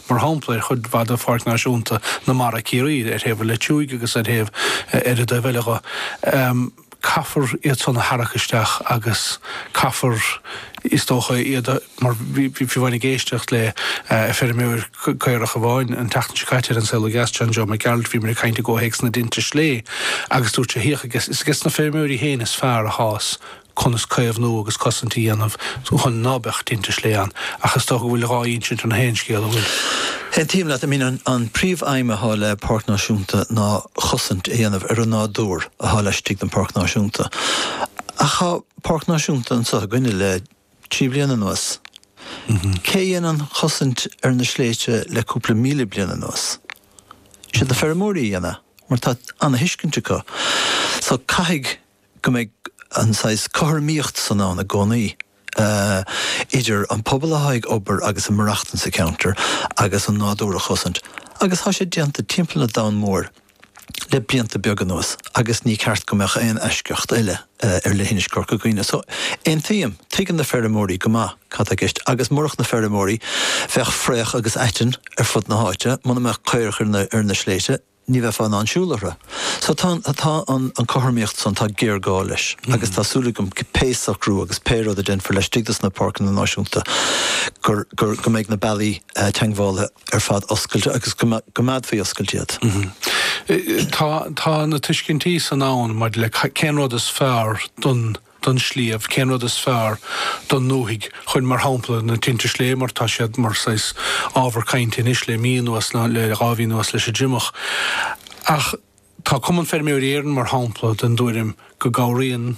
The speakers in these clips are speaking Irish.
mar shampla, ar chuid mhaith de Pháirc Náisiúnta na Mara, Ciarraí, ar thaobh an Leitriúigh agus ar thaobh ar an dtaobh eile dho, caithfear iad san a tharrac isteach agus caithfear, is dócha, iad a, mar bhí, bhí, bhí, bhí mé ag éisteacht le feirmeoir caorach amháin an tseachtain seo caite ar An Saol Ó Dheas, John Joe Mac Gearailt, bhíomar ag caint i gcomhthéacs na dtinte slé agus dúirt sé, féach, ages, is ages na feirmeoirí féin is fearr athá a fhios conas caomhnú agus cosaint a dhéanamh chun ná beadh tinte slé ann, ach is dócha go bhfuil dhá insint ar nach aon scéal, an bhfuil. Aontaím leat, i mean an príomh aidhm athá le Páirc Náisiúnta ná cosaint a dhéanamh ar an nádúr athá laistigh den Páirc Náisiúnta. Ach thá Páirc Náisiúnta anseo againne le trí bliana anuas, cé a dhéanann cosaint ar na sléite le cúpla míle bliain anuas? Siad na feirmeoirí a dhéanamh mar tá ana-thuiscint acu. So caithfidh. go mbeidh an saghas cothromaíocht san ann i gcónaí idir an pobal atá ag obair agus ag maireachtaint sa cheantar agus an nádúr a chosaint agus tá sé déanta timpeall an domhain mhóir le blianta beaga anuas agus ní ceart go mbeadh aon eisceacht eile ar leithinis Corca Dhuibhne. So aontaím, tuigeann na feirmeoirí go maith cad tá i gceist agus murach na feirmeoirí bheadh fraoch agus aiteann ar fud na háite, muna mbeadh caoirigh ar na sléite, ní bheifeá in ann siúl orthu. So tá an, tá an cothromaíocht san, tá géarghá leis agus tá súil agam pé socrú agus pé rud a déanfar laistigh de sna Páirceanna Náisiúnta gur, gur, go mbeidh na bealaí teagmhála ar fad oscailte agus go gcoimeádfaí oscailte iad. Tá, tá na tuiscintí san ann maidir le cén rud is fearr don, don sliabh, cén rud is fearr don ndúthaigh. Chuir, mar shampla, na tinte sléibhe, mar tá siad mar saghas ábhar cainte anois le mí anuas, nó le dhá mhí anuas leis an dtriomach. Ach tá Cumann Feirmeoirí Éireann, mar shampla, den dtuairim go gcabhraíonn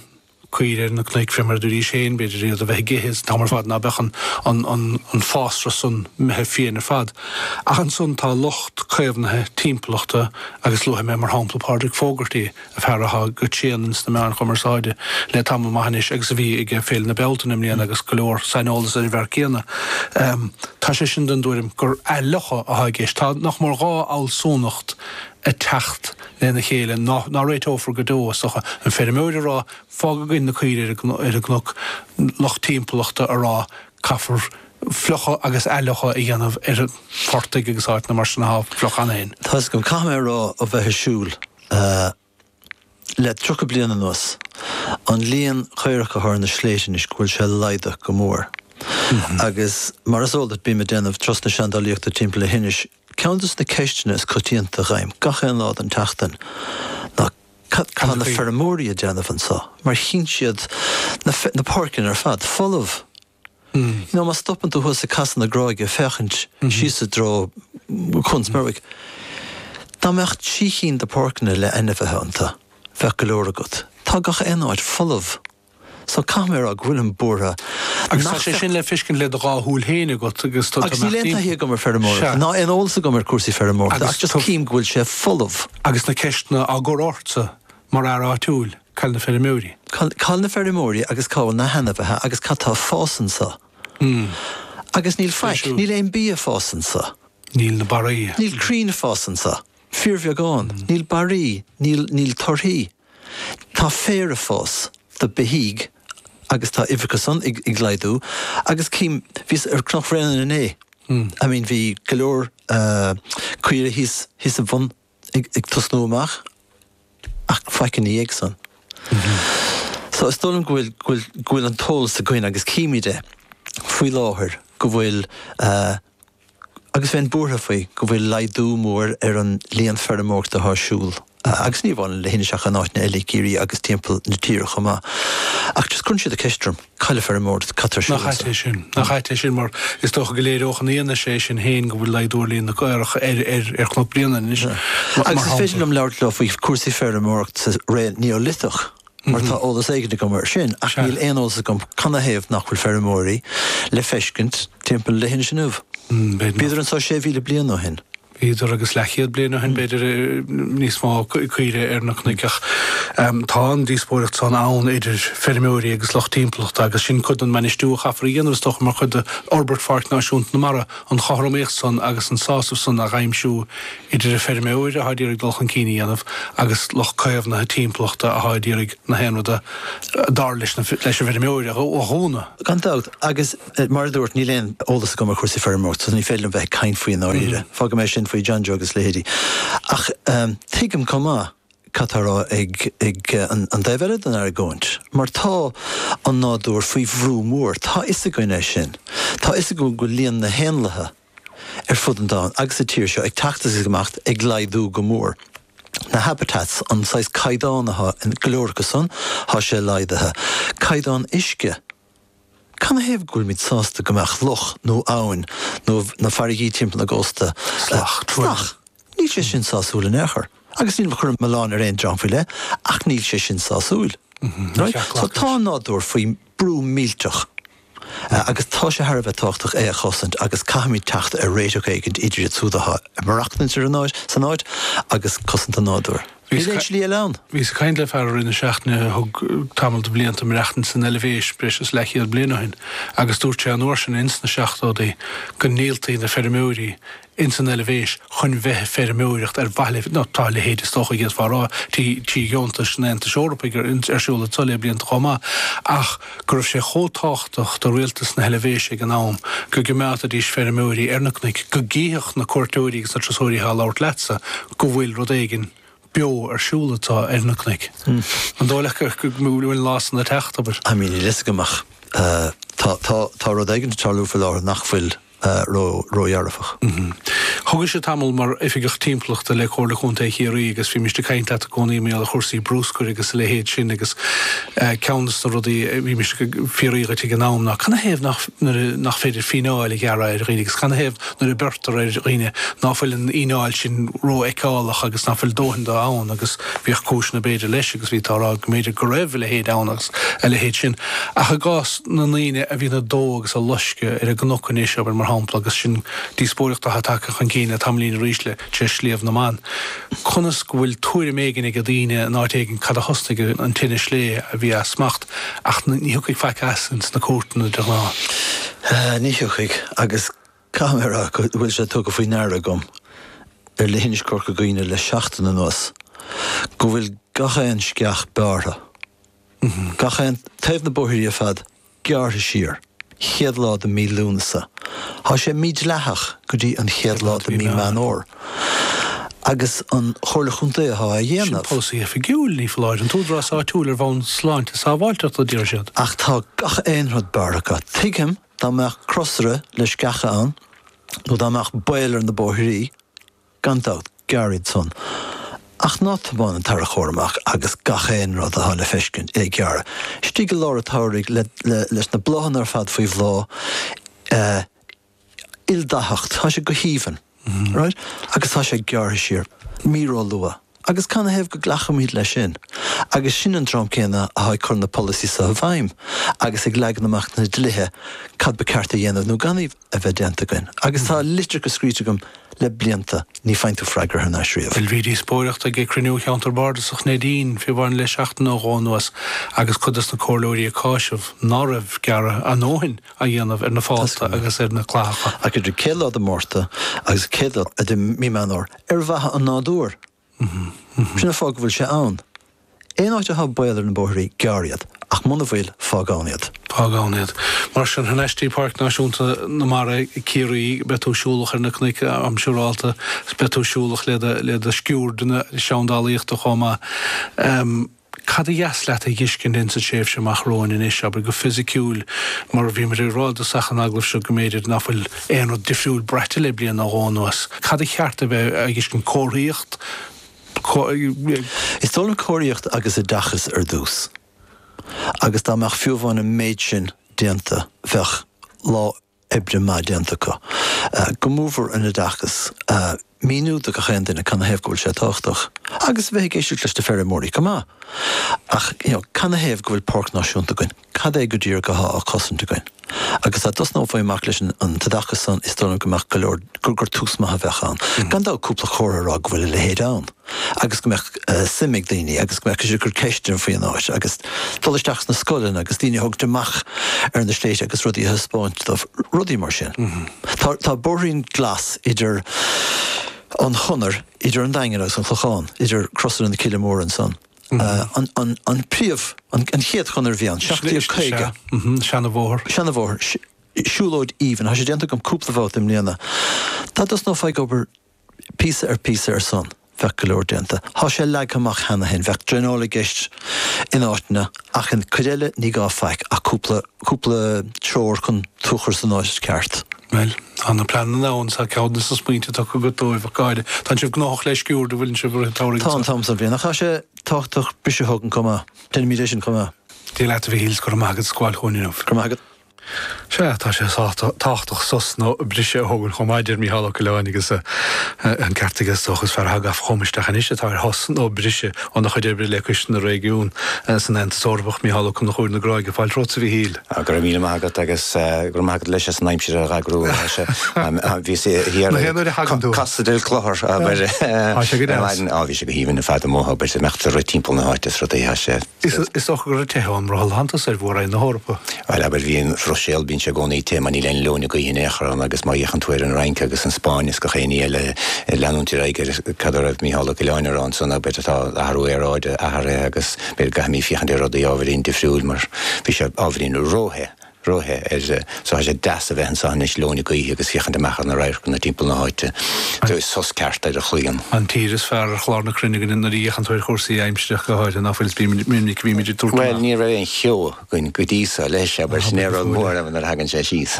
caoirigh ar na cnoic fé mar a dúiríse féin, b'fhéidir, iad a bheith ag ithe an t-am ar fad ná beadh an fásra san imithe fiáin ar fad. Ach ansan tá lucht caomhnaithe timpeallachta agus luafaidh mé mar shampla Pádraic Fogarty, fear atá go tréan ins na meáin chumarsáide le tamall maith anois agus a bhí ag Féile na Bealtaine i mbliana agus go leor saineolas ar an bhfear céanna. Tá sé sin den dtuairim gur athfhliuchadh atá i gceist. Tá nach mór dhá fhealsúnacht ag teacht lena chéile ná réiteofar go deo, is dócha, an feirmeoir a rá 'fág againn na caoirigh ar an gcnoc', lucht timpeallachta a rá 'caithfear fliuchadh agus athfhliuchadh a dhéanamh ar phortaigh agus áiteanna mar sin athá fliuch ann féin'. Toisc, caithfidh mé a rá, a bheith ag siúl? a le tríocha bliain anuas, an líon caorach athá ar na sléite anois go bhfuil sé laghdaithe go mór. Agus mar is eol duit, bím ag déanamh turais na seandálaíochta timpeall leithinis. Ceann de sna ceisteanna is coitianta dh'fhaighim gach aon lá den tseachtain ná cad tá na feirmeoirí a déanamh anseo mar chíonn siad na na páirceanna ar fad folamh. you know má stopann tú thuas ag casadh na gráige féachaint síos i dtreo Chuan Smerwick, dá mbeadh trí chinn de pháirceanna le hainmhithe iontu, bheadh go leor agat. Tá gach aon áit folamh. So caithfidh mé a rá go bhfuilim buartha Agus tá sé le feiscint le do dhá shúil féin agat agus níl aon taithí agam ar feirmeoireacht, ná aon eolas agam ar cúrsaí feirmeoireachta ach just cím go bhfuil sé folamh. Agus na ceisteanna ag cur ortsa. Mar fhear áitiúil, cá bhfuil na feirmeoirí? Cá bhfuil na feirmeoirí agus cá bhfuil na hainmhithe agus cad tá ag fás anso? Agus níl faic, níl aon bia ag fás anso. Níl na barraí. Níl crainn ag fás anso. Fíorbheagán, níl barraí, níl, níl torthaí. Tá féar ag fás. do beithígh agus tá a n-uimhreacha san ag, ag laghdú agus cím, bhíos ar Chnoc Bréanainn inné, I mean bhí go leor caoire thíos, thíos ag bun, ag tosnú amach ach faic ina dhiaidh san. So is dóigh liom go bhfuil go bhfuil an t-eolas againn agus címid é faoi láthair go bhfuil agus bheinn buartha faoi go bhfuil laghdú mór ar an líon feirmeoireachta atá ar siúl agus ní amháin Leithinis ach in áiteanna eile i gCiarraí agus timpeall na tíre chomh maith ach just cuireann siad an ceist orm. Cá bhfuil na feirmeoirí, cad tá Nach ait é sin? Nach ait é sin mar is dócha go léireodh an fhianaise é sin féin go bhfuil laghdú ar líon na gcaorach ar Chnoc Bréanainn anois, mar shampla. Agus is féidir liom labhairt leat faoi chúrsaí feirmeoireachta sa ré Neoiliteach mar tá eolas éigin agam air sin ach níl aon eolas agam canathaobh nach bhfuil feirmeoirí le feiscint timpeall Leithinis inniu, bhíodar anseo 6,000 bliain ó shin. bhíodar agus leathchéad bliain ó shin, b'fhéidir, níos mó caoire ar na cnoic ach tá an díospóireacht san ann idir feirmeoirí agus lucht timpeallachta agus sin cuid den mbainistiú a chaithfear a dhéanamh is dócha mar chuid d'fhorbairt Pháirc Náisiúnta na Mara, an chothromaíocht san agus an sásamh san a aimsiú idir an feirmeoir atá ag iarraidh dul chun cinn a dhéanamh agus lucht caomhnaithe timpeallachta atá ag iarraidh gach aon rud a dar leis an bhfeirmeoir a dhúnadh. Gan dabht, agus Mar a dúrt, níl aon eolas agam ar chúrsaí feirmeoireachta so ní féidir liom bheith ag caint faoi i ndáiríre. Fágfaidh mé sin faoi John Joe agus a leithéidí. Ach tuigim chomh maith cad tá á rá ag an dtaobh eile den argóint mar tá an nádúr faoi bhrú mór. Tá a fhios againn é sin. Tá a fhios againn go bhfuil líon na héanlaithe ar fud an domhain agus sa tír seo ag teacht is ag imeacht, ag laghdú go mór. Na habitats, an saghas caighdeán athá in go leor acu san, thá sé laghdaithe. Caighdeán uisce. Canathaobh go bhfuilimid sásta go mbeadh loch nó abhainn nó na farraigí timpeall na gcóstaí salach? Níl sé sin sásúil in aon chor. Agus nílim ag cur an milleán ar aon dream faoi leith ach níl sé sin sásúil. Tá an nádúr faoi brú millteach agus tá sé thar a bheith tábhachtach é a chosaint agus caithfimid teacht ar réiteach éigin idir iad siúd atá ag maireachtaint san áit agus cosaint an nádúir. Bhíos ag triall ann. Bhíos ag caint le fear i rith na seachtaine a thug tamall de bhlianta ag maireachtaint san Eilbhéis, breis is leathchéad bliain ó shin, agus dúirt sé an uair sin, ins na seachtódaí, go ndíoltaí na feirmeoirí ins an Eilbhéis chun bheith ag feirmeoireacht ar mhaithe le, nó tá a leithéid is dócha a d'fhéadfá a rá, trí dheontais an Aontais Eorpaigh ar siúl le blianta chomh maith, ach. go raibh sé chomh tábhachtach do rialtas na hEilbhéise ag an am go gcoimeádaidís feirmeoirí ar na cnoic go gcífeadh na cuairteoirí agus na turasóirí athá á thabhairt leatsa go bhfuil rud éigin beo ar siúl athá ar na cnoic. An dóigh leat go bhfuil an lá san ag teacht, abair? I mean níl a fhios agam ach tá rud éigin ag tarlú faoi láthair nach bhfuil ródhearfach. Thugais-se tamall mar Oifigeach Timpeallachta le Comhairle Contae Chiarraí agus bhí mise ag caint leat i gcónaí i mbun chúrsaí brúscair agus a leithéid sin agus ceann de na rudaí a bhí mise ag fiafraí díot ag an am ná canathaobh nach féidir fíneáil a ghearradh ar dhaoine agus canathaobh nuair a beirtear ar dhaoine ná fuil an fhíneáil sin rófheiceálach agus ná fuil dóthain dó ann agus bhíodh cúiseanna b'fhéidir leis agus bhíodh tú ag rá go mb'fhéidir go raibh a leithéid ann agus a leithéid sin ach i gcás na ndaoine a bhíonn ag dó agus ag loisceadh ar an gcnoc anois, abair, mar shampla, agus sin díospóireacht atá tagtha chun cinn le tamaillín arís le tine Sliabh na mBan, conas go bhfuil tuairim éigin ag daoine in áit éigin cé a thosnaigh an tine slé a bhí as smacht ach ní thiocfaidh faic as sin sna cúirteanna de ghnáth. Ní thiocfaidh, agus caithfidh mé a rá go bhfuil sé tugtha faoi ndeara agam ar leithinis Chorca Dhuibhne le seachtain anuas go bhfuil gach aon sceach bearrtha. Gach aon taobh na bóithrí ar fad gearrtha siar. Chéad lá de mí Lúnasa. Tá sé mídhleathach go dtí an chéad lá de mí Meán Fhómhair. Agus an Chomhairle Chontae atá á dhéanamh. Polasaí oifigiúil, ní foláir. An tÚdarás Áitiúil ar bhonn sláinte sábháilteachta, a deir siad. Ach tá gach aon rud bearrtha acu. Tuigim dá mbeadh crosaire le sceacha ann nó dá mbeadh baol ar na bóithrí, Gan dabht, gearr iad san. Ach ná tiomáin an tarracóir amach agus gach aon rud atá le feiscint a ghearradh istigh i lár a tsamhraidh le, le, leis na bláthanna ar fad faoi bhláth. Ildaitheacht. Tá sé go haoibhinn. Right? Agus tá sé gearrtha siar. Mí róluath. Agus canathaobh go nglacaimid leis sin agus sin an dream céanna atá ag cur na polasaí seo i bhfeidhm agus ag leagan amach na dlíthe cad ba ceart a dhéanamh nó gan a bheith déanta againn? Agus tá litreacha scríte agam le blianta, ní faigheann tú freagra thar n-ais riamh. Bhuel, bhí díospóireacht ag Cruinniú Cheantar Bardasach Neidín fé bhun le seachtain nó dhó anuas agus cuid dos na comhairleoirí ag cáiseamh ná raibh gearradh a ndóthain á dhéanamh ar na fálta agus ar na clathacha. Ach idir céad lá de Mhárta agus céad lá de Mhí Meán Fhómhair, Ar mhaithe leis an nádúr, sin é an fáth go bhfuil sé ann. Aon áit athá baol ar na bóithrí, gearr iad, ach muna bhfuil, fág ann iad. Fág ann iad. Mar sin, thá an aiste Páirc Náisiúnta na Mara Ciarraí, beidh tú ag siúl amach ar na cnoic go siúrálta, beidh tú ag siúl amach le do sciuird na seandálaíochta chomh maith. cad ba dheas leat a dh'fhiscint ins an tréimhse amach romhainn anois, abair, go fisiciúil, mar bhíomar ag rá i dtosach an agallaimh seo go mb'fhéidir ná fuil aon rud difriúil braite le bliain nó dhó anuas, cad ba cheart a bheith á dh'fhiscint, comharthaíocht, comh. Is dóigh liom comharthaíocht agus oideachas ar dtús agus dá mbeadh fiú amháin an méid sin déanta bheadh lá i. oibre maith déanta acu. Go mór mhór an t-oideachas. Míniú do gach aon duine cana thaobh go bhfuil sé tábhachtach. Agus a bheith ag éisteacht leis na feirmeoirí chomh maith. Ach you know cana thaobh go bhfuil páirc náisiúnta againn? Cad é go díreach athá á chosaint againn? Agus dá dtosnófaí amach leis an t-oideachas san is dóigh liom go mbeadh go leor, gur tús maith a bheadh ann. Gan dabht cúpla comhartha a rá go bhfuil a leithéid ann. agus go mbeadh suim ag daoine agus go mbeadh siad ag cur ceisteanna faoi an áit agus dul isteach sna scoileanna agus daoine a thabhairt amach ar na sléibhte agus rudaí a thaispeáint dóibh, rudaí mar sin. Tá, tá bóithrín glas idir an Chonair, idir an Daingean agus an Clochán, idir crosaire na Coille Móire ansan. An, an, an príomh, an, an chéad chonair a bhí ann, seacht déag caoga. Seana bhóthar. Seana bhóthar, siúlóid aoibhinn, tá sé déanta agam cúpla babhta i mbliana. Dá dtosnófaí ag obair. píosa ar phíosa air san, bheadh go leor déanta. Thá sé leagtha amach cheana féin. Bheadh draenáil i gceist in áiteanna ach an cuid eile ní gá faic ach cúpla, cúpla treoir chun tú a chur san áit cheart. Bhuel, tá na pleananna ann, is a chuid smaointe tugtha agat dóibh, ach go háirithe, tán sibh gnóthach le sciuird a bhfuileann sibh uirthi, tabharfaidh Tá an t-am so bhliain ach thá sé tábhachtach briseadh thógaint chomh maith. Déanfaimid é sin chomh maith. Dia leat a Mhichíl 's go raibh maith agat as gabháil chugainn inniu. Go raibh maith agat. Sea, tá sé tábhachtach sos nó briseadh a thógaint chomh maith, a deir Micheál Ó Coileáin, agus an ceart aige, is dócha. Is fear atá tagtha chugham isteach anois atá ar shos nó briseadh óna chuid oibre le Coiste na Réigiún san Aontas Eorpach. Micheál Ó Conchúir na Gráige, fáilte romhat a Mhichíl. Go raibh míle maith agat agus go raibh maith agat leis as an aimsir a eagrú. Bhí sé thiar. Mo théann uair a thagann tú. Casadh ar an gclochar. Tá sé go deas. Bhí sé go haoibhinn ar fad amuigh, beidh sé imeacht ag rith timpeall na háite is rudaí. Is dócha gur ag teitheadh ón mbrothall atáthas ar mhór-roinn na hEorpa. Bhuel, abair, bhí an Bhruiséil, bíonn sé i gcónaí te, mar níl aon leoithne ghaoithe in aon chor ann agus má fhéachann tú ar an Fhrainc agus an Spáinn is gach aon ní eile ag leanúint ar aghaidh ar cad a raibh Micheál Ó Coileáin ag rá ansan ná b'fhéidir tá athrú aeráide tarlaithe agus b'fhéidir go gcaithfimid féachaint ar rudaí ábhairín difriúil mar bhí sé ábhairín ró-the. rothaí air so tá sé deas a bheith anso anois lóin ag ithe agus féachaint amach ar na radharcanna timpeall na háite. An. Is tá an ceart ar a Chliain. An tír is fearr ar chlár na cruinne againne nuair a fhéachann tú ar chúrsaí aimsireach go háirithe, ná fuil? Is bímid, mion minic a bhímid ag tabhairt Bhuel, amach. ní raibh aon cheo againn go dtí so, leis, sé, abair, sin é a raibh an mhór ann nuair a thagann sé síos.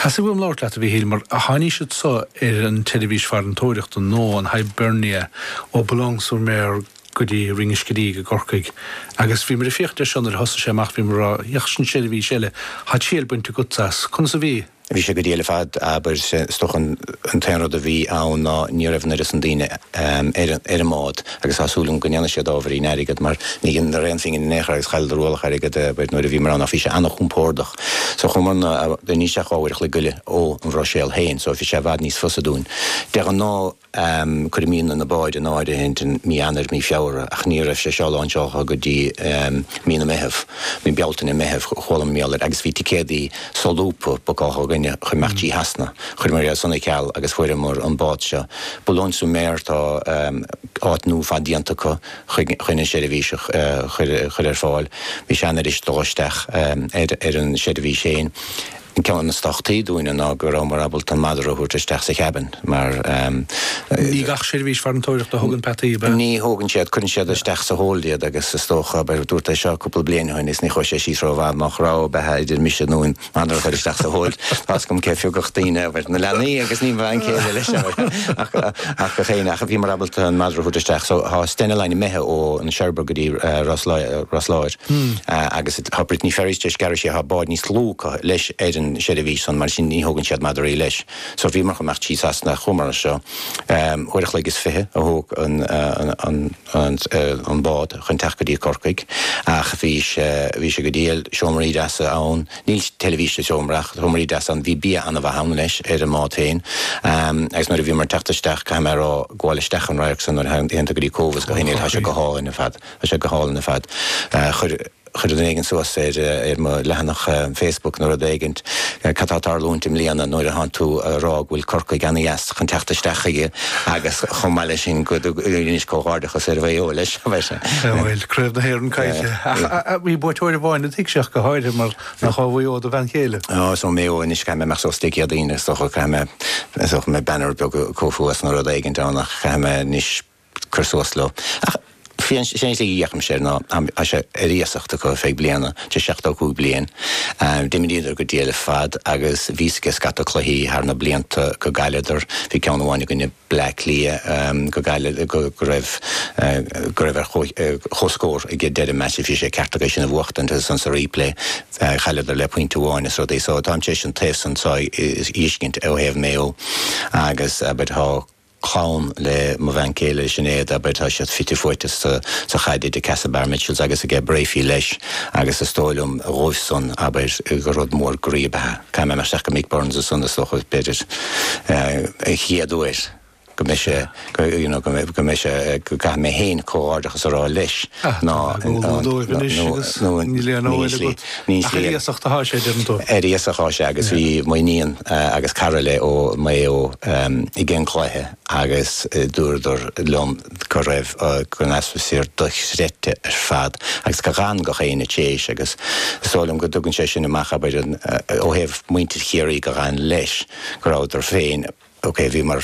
Theastaigh uaim labhairt leat, a Mhíchíl, mar tháini' siad so ar an tseirbhís farantóireachta, nó an Hibernia, ó Boulogne-sur-Mer go. go dtí Rinn an Scidígh i gCorcaigh agus bhí mé ag fiafraí nuair a thosaigh sé amach bhí mé ag rá ach sin seirbhís eile tá triail bainte agat as. Conas a bhí? Bhí sé go diail ar fad abair is dócha an t-aon rud a bhí ann ná ní raibh an oiread san daoine ar an mbád agus tá súil agam go ndéanfaidh siad ábhairín airgead mar ní dheineadar aon phingin in aon chor agus chailleadar ualach airgead abair nuair a bhíomar ann ach bhí sé an-chompordach so chuamar ann níl sé ach dhá uair a chloig go leith ó an Bhruiséil féin so bhí sé i bhfad níos fusa dúinn de ghnáth. um cuirimid na báid in áirithe i mí Eanáir, mí Feabhra, ach ní raibh sé seo láinseáltha go dtí um Mí na Meitheamh, mí Bealtaine, Meitheamh, chuala mé mar gheall air agus bhí ticéadaí so-lúbtha bucáltha againn chun imeacht dtí Sasana. Chuireamar iad san ar ceal agus fuaireamar an bád seo. Boulogne-sur-Mer tá um áit nua ar fad déanta acu chun an seirbhís a chur ar fáil. Bhí sé an-fhuirist dul isteach um ar ar an seirbhís féin. Ceann de na sochair dúinne ná go rabhamar ábalta an madra a thabhairt isteach sa chábán mar. Ní gach seirbhís farantóireachta a thugann peataí, ab ea? Ní thugann siad, cuireann siad isteach sa hold iad agus is dócha, dúirt é seo cúpla bliain ó shin agus ní chuaigh sé síos rómhaith ach dá raibh, ab ea, idir mise nó an madra a chur isteach sa hold. Tá fhios agam cé phiocfadh daoine, ab ea, na leanaí agus mo bhean chéile leis an madra ach ach féin ach bhíomar ábalta an madra a thabhairt isteach. So tá Stena Line imithe ó Cherbourg go dtí Ros Láir. agus tá Brittany Ferries tar éis gearradh siar tá bád níos lú acu leis ar an seirbhís san mar sin ní thógann siad madraí leis so bhíomar chun imeacht dtí Sasana, seacht uair a chloig is fiche a thóg an bád chun teacht go dtí Corcaigh ach bhí sé bhí sé go diail seomraí deasa ann níl teilifís sa seomra ach seomraí deasa ann bhí bia ana-mhaith ann leis ar an mbád féin agus nuair a bhíomar ag teacht isteach caithfidh mé a rá gabháil isteach an radharc san nuair a théann tú go dtí Cobh is go Haulbowline tá sé go hálainn ar fad. Tá sé go hálainn ar fad. Chuir duine éigin suas ar mo leathanach Facebook nó rud éigin, cad tá ag tarlúint i mbliana nuair atánn tú a rá go bhfuil Corcaigh ana-dheas chun teacht isteach chuige agus chomh maith leis sin go n-inis comhghairdeachas ar Mhaigh Eo leis. Sea, bhuel, craobh na hÉireann caillte. Ach bhí buaiteoir amháin i do thighse go háirithe mar nach ó Mhaigh Eo do bhean chéile? Ó, is ó Maigh Eo anois. Caithfidh mé imeacht suas Dé Céadaoin agus is dócha, caithfidh mé banner beag a chur thuas nó rud éigin ann ach caithfidh mé anois, cur suas leo. Ach féach, is é an tslí a fhéachaimse air ná, tá sé ar iasacht acu ar feadh bliana, tar éis 75 bliain. D'imríodar go diail ar fad agus bhíos ag scata cluichí thar na blianta go gcailleadar. Bhí ceann amháin i gcoinne Bleá Cliath go gcailleadar, go raibh, go raibh ar chomhscór ag deireadh meaits, bhí sé ceart acu sin a bhuachtaint agus ansan sa replay chailleadar le pointe amháin is rudaí. So táim tar éis an taobh san so a fheiscint ó thaobh Mayo agus abair tá, clann le mo bhean chéile, Sinéad, abair, tá siad fite fuaite sa sa chaid idir Castlebar Mitchells agus ag ag Breaffy leis agus is dóigh liom dhóibh san abair gur rud mór groí ab ea é. Caithfidh mé isteach go Mick Byrne's ansan is dócha b'fhéidir an chéad uair go mbeidh sé go you know go mbeidh sé go gcaithfidh mé féin comhghairdeachas a rá leis ná Tá go bhfuil dóibh anois agus níl aon amhail agat. Níos Ach ar léir. iasacht atá sé, deireann tú? Ar iasacht atá sé agus bhí m'iníon agus cara léi ó Maigh Eo ag an gcluiche agus dúradar liom go raibh, an atmosphere dochreidte ar fad agus gur fhan gach éinne tar éis agus is dóigh liom go dtugann sé sin amach abair ó thaobh mhuintir Chiarraí gur fhan leis go rabhadar féin, ok, bhíomar.